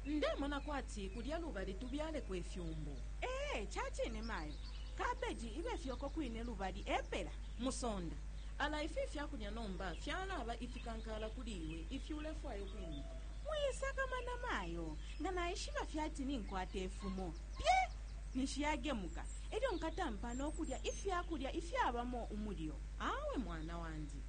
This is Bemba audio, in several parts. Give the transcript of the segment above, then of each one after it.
ndemona kwati kulya lubali tubyaleko ifyumbu. Ee, ca cine mayo. Kabeji ibe fye uko kwine lubali epela. Musonda, ala ifi ifya kulya nomba fyalaba ifikankaala kuli iwe ifi ulefwaya ukwimita. Mwisakamana mayo, nga naishiba fye ati ninkwata ifumo, pye! ninshi yagemuka, e lyo nkatampa no kulya ifya kulya ifyabamo umulyo. Awe mwana wandi.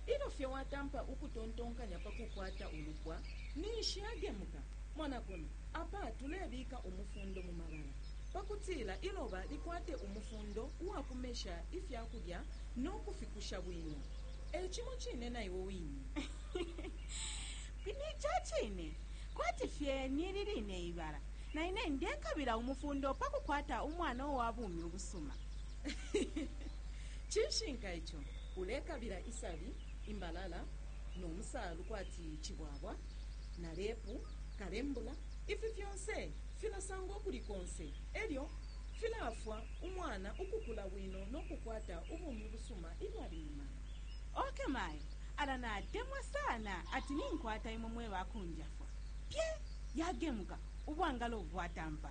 Ilyo fye watampa ukutontonkanya pa kukwata ulupwa, ninshi agemuka. Mona kuno. Apa tulebika umufundo mu mabala pa kutila iloba likwate umufundo uwa kumesha ifya kulya no kufikusha bwino. E cimo cine na iwe wine. Ni ca cine, kwati fye ni li line ibala, na ine ndekabila umufundo pa kukwata umwana uwa bumi ubusuma. cinshinka ico ulekabila isabi imbalala no musaalu kwati cibwabwa na lepu kalembula ifi fyonse filasangwa ukuli konse e lyo filaafwa umwana ukukula bwino no kukwata ubumi busuma ilyo ali mu mala. Ok mayo, ala natemwa sana ati ninkwata imwe mwe ba kunjafwa. Pye! Yagemuka, ubwangalo bwatampa.